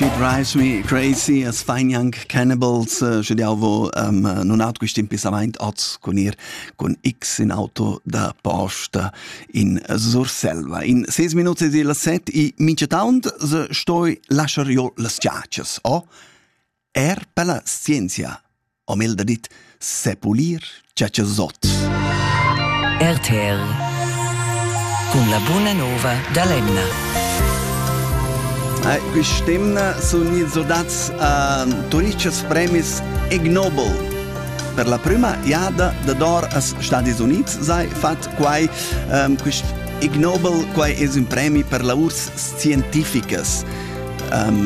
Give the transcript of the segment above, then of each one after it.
She drives me crazy as fain young cannibals uh, sche jau vo um, nun at quist impissamaint oz cun ir cun X in auto da posta in Surselva. In 6 minuts es il set e mincha taunt se stoi lascher jo las giacias, o? Oh? Er per la scienzia ho Mel da dit sepulir tschatschazot. RTL cun la buna nova da l'emna. Ai, quest'emna sun ins ordats a Turicas premis Ignobel. Per la prima jada da dor als Stadis Units sei fat quai um, quist Ignobel quai es un premi per la urs scientificas. Um,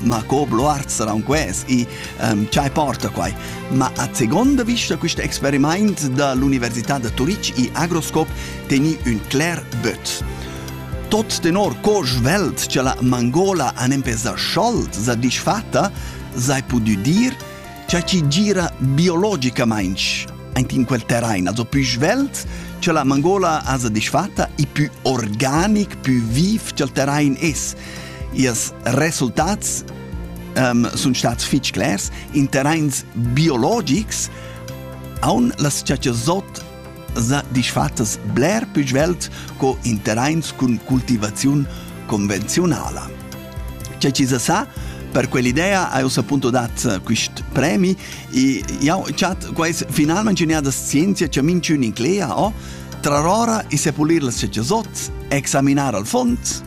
ma co bloart saran ques e um, chai porta quai. Ma a seconda vista questo experiment da l'Università de Turitg e Agroscope teni un clar but. Tot tenor co svelt che la Mangola an empezà scholt, sa disfatta, sai pudu dir, che ci gira biologicamente in quel terrain, also più svelt che la Mangola ha disfatta e più organic, più viv che il terrain es. Ils resultats um, sun stats fich clers. In terrains biologics haun las chachazzot za disfattas bler più svelt co in terrains cun cultivaziun convenzionala. C'è ci sa per quell'idea hai appunto dat quist premi e jau chat quais finalmente ingegnadas scienza che min in clea o trarora e sepulir las chachazzot, examinar al fond